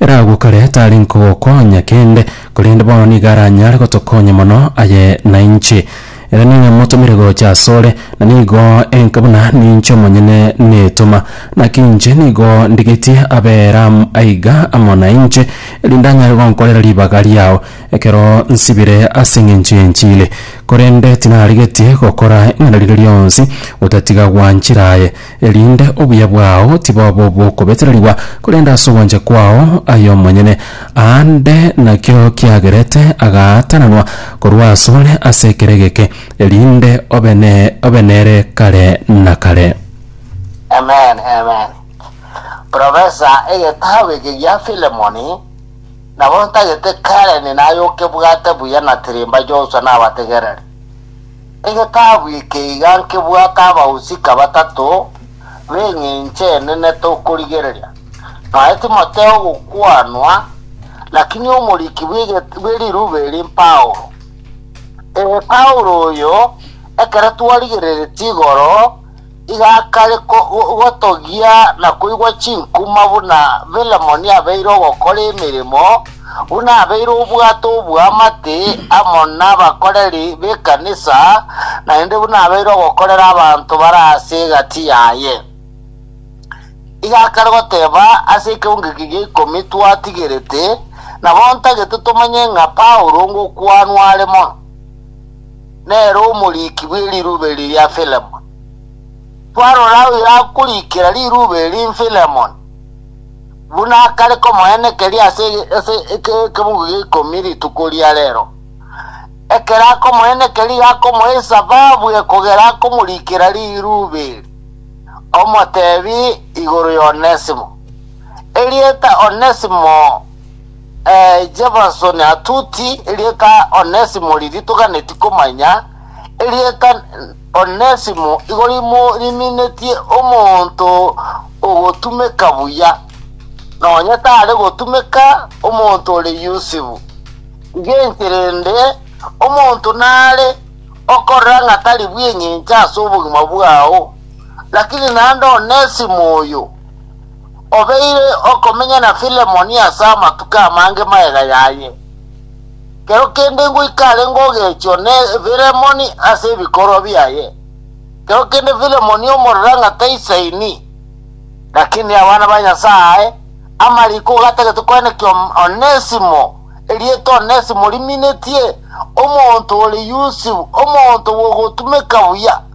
Ere agwo kare tari nkogokonya kende, korende bono nigo aranyare gotokonya mono aye nainche. Ere nigo motomire gocha asore, na nigo enka buna ninche omonyene netoma. Naki inche nigo ndigetie abe Ram aiga amo nainche, erinde anyare gonkorera ribaga riao ekero nsibire ase engencho y'enchili. Korende tinarigetie gokora eng'ana riria rionsi gotatiga gwanchera aye. erinde obuya bwao tiboba obw'okobetererigwa, korende ase ogwancha kwao aye omonyene. Aande nakio kiagerete agaatananwa korwa asore ase ekero egeke, erinde obe ne obe nere kare na kare. Amen, amen. Professor, egetabu eke gia Philemoni nabo ntagete Karen naye okebwate buya na Tirimba Joshua nabategereri. Egetabu eke iga nkebwate abahusika batato b'eng'encho enene tokorigereria. Naye Timotheo ogokwanwa, lakini omoriki bwe rirube eri Paulo. Ee, Paulo oyo, ekero twarigereretie igoro, igakare gotogia na koigwa chinkuma buna Filemoni abeire ogokora emeremo, buna abeire obwate obw'amate amo nabakoreri b'ekanisa, naende buna abeire ogokorera abanto bare ase egati yaye. Igakare goteba ase ekeungu eke gia ikomi twatigerete, nabo ntagete tomanye ng'a Paulo ngokwanwa are mono. nere omoriki bwe rirube riria Filemoni. Twarora oyoragorikera rirube eri Filemoni, buna akare komoenekeria ase ase ekebugu gia ikomi rituko ria rero. Ekero akomoenekeria akomoisa babu ekogera akomorikera rirube eri, omotebi igoro y'Onesimo, erieta Onesimo, Jefferson Atuti, erieta Onesimo riria toganeti komanya, erieta Onesimo igo rimo riminetie omonto ogotumeka buya, nonya tare gotumeka omonto ore yusibu. Iga inche rende, omonto nare okorora ng'a tari bw'engencho ase obogima bwao, lakini naende Onesimo oyo, obeire okomenya na Filemoni ase amatuko amange magega yaye. Kero kende ngoika arenge ogechwa ne Filemoni ase ebikorwa biaye. Kero kende Filemoni omorera ng'a taisaini, lakini abana ba Nyasae amariko gatagete koenekia Onesimo, erieta Onesimo riminetie, omonto ore yusibu, omonto bw'ogotumeka buya.